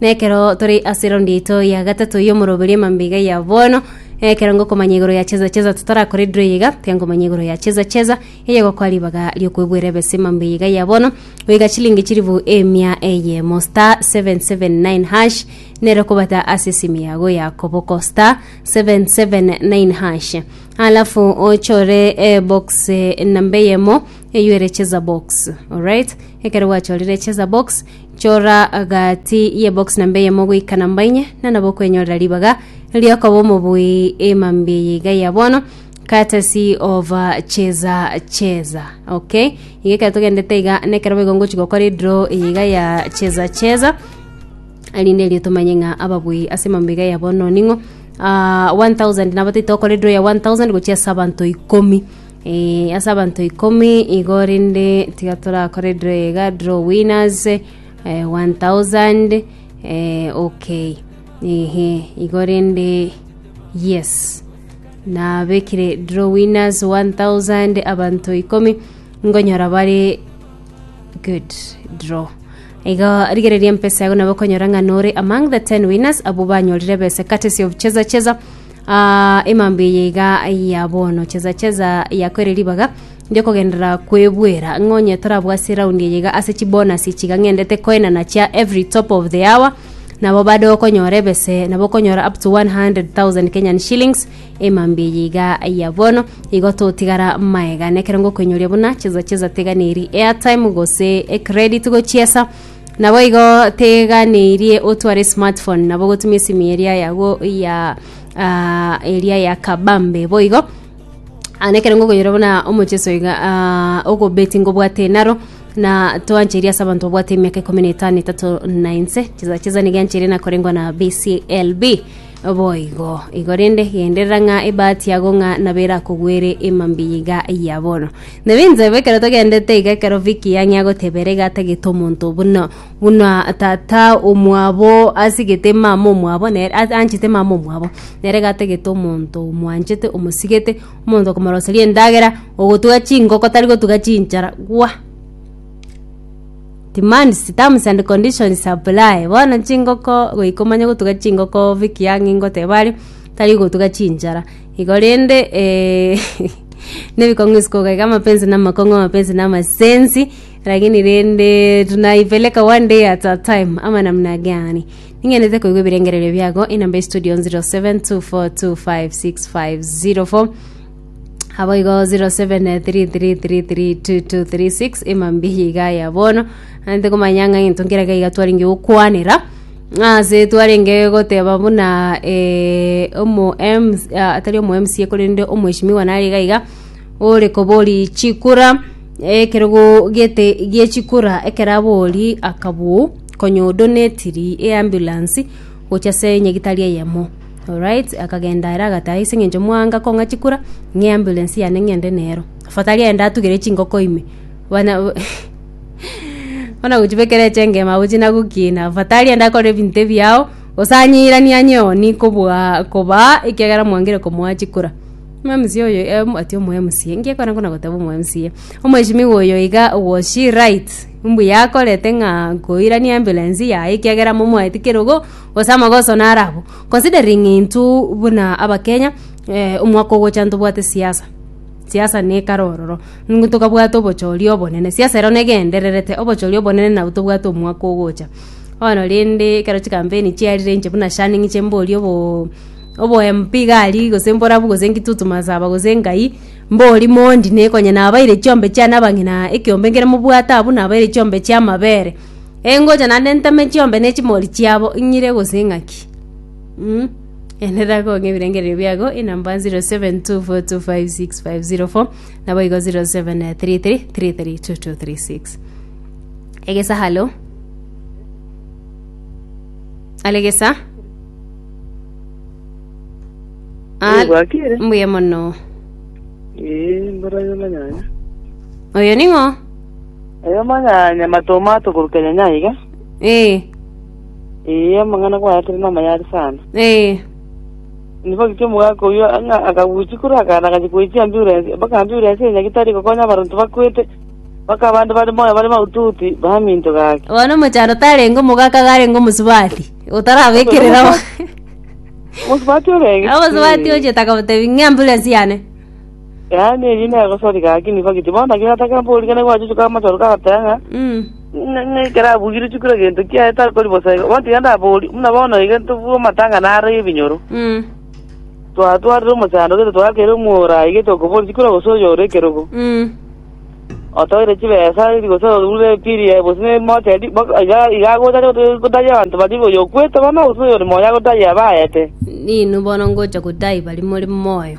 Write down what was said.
Na ekero tore ase eraundi yaito ya gatato y'omoroberio mambia iga ya bono, ekero ngokomanya igoro ya Cheza Cheza totarakore draw iga, tiga nkomanya igoro ya Cheza Cheza eye gokoa ribaga riokoigwera ebese mambia iga ya bono, goika chilingi chilifu emia eyemo star 779 hash nero kobata ase esimu yago ya koboko star 779 hash alafu ochore eh, box eh, namba eyemo eyuere Cheza box alright ekero gwachorire Cheza box Chora gati y'ebox namba eyemo goika namba inye, na nabo okwenyorera ribaga ri'okoba omobui emambi eye iga ya bono courtesy of uh, cheza cheza okay iga ekero togendete iga nekero boigo ngochi gokora edraw eye iga ya cheza cheza erinde erio tomanye ng'a ababui ase emambo iga ya bono ning'o ah, 1000 nabo taito okora edraw ya 1000 gochia ase abanto ikomi Ee, ase abanto ikomi igo rende tiga torakore draw iga draw winners eh, 1000 eh, okay ehe igo rende yes nabekire draw winners 1000 abanto ikomi ngonyora bare good draw iga rigereria mpesa yago nabo konyora ng'a nore among the 10 winners abo banyorire bese courtesy of cheza cheza Aa, emambe eye iga ya bono, cheza cheza yako ere ribaga riokogenderera kwebuera, ng'a onye torabwo ase eraundi eye iga ase chibonasi chiga ng'endete koenana chia every top of the hour nabo bade okonyora ebese nabo okonyora up to 100,000 Kenyan shillings emambe eye iga ya bono igo totigara maega nekero ngokoinyoria buna cheza cheza tega neri airtime gose ecredit gochiesa Naboigo teganeirie otware smartphone nabo gotumia esimu eria yago ya ah, eria ya kabambe boigo Ah, nekero ngokoyora buna omocheso iga ah, ogobeti ngobwate enaro na toancheria ase abanto babwate emiaka ikomi na etano etato na inse chesa chesa nigiancheire nakorengwa na bclb Naboigo, igo rende genderera ng'a ebahati yago ng'a nabo erakogwere emambia iga ya bono. Nabe inchebe ekero togendete iga ekero Vicky yang'ia gotebera iga atagete omonto buna buna tata omwabo asigete mama omwabo nere a- anchete mama omwabo nere iga atagete omonto omwanchete omosigete omonto okomoroseria endagera ogotuga chingoko tari gotuga chinchara gwa. Demands, terms and conditions apply. Bono chingoko goika omanye gotuga chingoko Vicky ang'e ingoteba are tari gotuga chinchara igo rende eh, nebikong'u isiko gaiga amapenzi na amakong'u amapenzi na amasensi lakini rende tunaipeleka one day at a time ama namna gani ning'enete koigwa ebirengererio biago inamba ya studio 0724256504 aboigo 0733332236 emambihi iga ya bono ante komanya ng'a gento nkere gaiga twarenge gokwanera ase twarenge goteba buna eh, omo MC, ah, atari omo mca korende omweshimiwa nare iga iga ore kobori chikura ekerogo gete giechikura ekero abori akabuu konyodonetiri eambulansi gocha ase nyagitari eyemo Alright, akagenda ere agataha ase eng'encho mwanga kong'a chikura, ng'a eambulance yane ng'ende nero. Afadhali aende atugere chingoko ime. Bana bono gochibekera echengema abwo chinagokina, afadhali aende akore ebinto ebiya ao, gose anyeiranie anyeoni kobua kobaa ekiagera mwangire komoa chikura. Omwamisi oyo eh, ati omwamisi, engiya ekero nakona goteba omwamisi, omweshimiwa oyo iga was she right? Mbuya akorete ng'a nkoiranie eambulance yaye ekiagera momoete kerogo. gose amagoso naro abwo considering intwe buna abakenya eh, omwaka ogocha ntobwate siasa siasa nekare ororo Ngu tokabwata obochori obonene siasa ero negendererete obochori obonene nabo tobwate omwaka ogocha bono rende ekero chikampeni chiarire inche buna shani ng'iche mborie obo obo MP gari gose mborabu gose ngitutu masaba gose ngai mbori mondi nekonye nabaire chiombe chiane abang'ina ekiombe nkere mobwate abwo nabaire chiombe chiamabere Engocha naende ntame chiombe ne chimori chiabo ing'ire gose ing'aki. Mh, enera kong'a ebirengererio biago enamba 0724256504 naboigo 0733332236. Egesa halo. Alegesa. Al- Egwakire? mbuya mono. Ee, mboranyama nyanya. Oyo ning'o? Eyo manya nyama tomato goruka nyanya iga. Eh. Ee, amang'ana kwayatire namayari sana. Eh. Nigo giki omogaka oyio ang'a akaguchi kuru akana agachi koichia ambulance mpaka ambulance ya nyagitari gokonya abaronto bakwete mpaka abande bari moyo bari maututi baminto gaki. Bono omochando tarenge omogaka garenge omosubati. Otarabekerera. Omo- Omosubatia orenge. Abasubati oche takabotebi ng'a ambulance yane. Yaani ebi negosori gaki nigo giti bono naki natakera mporigane gwachuchuka amachoro kagateba ng'a Mm. ng'a- ng'a ekero abugire chukura gento kiaye takori bosa igo bono tiga ndabori buna bono iga tobue amatang'ana are ebinyoro Mm. twatwarire omochando gete twakere omwora iga tokobori chikura gose oyore ekerogo Mm. otoire chibesa iri gose orure epiri yaye gose nemocha eri bo- iga iga agocha gote- gotayia abanto baria iga oyo okwete bono gose oyore moyo agotayia abaete Ninu bono ngocha gotaai bari more moyo.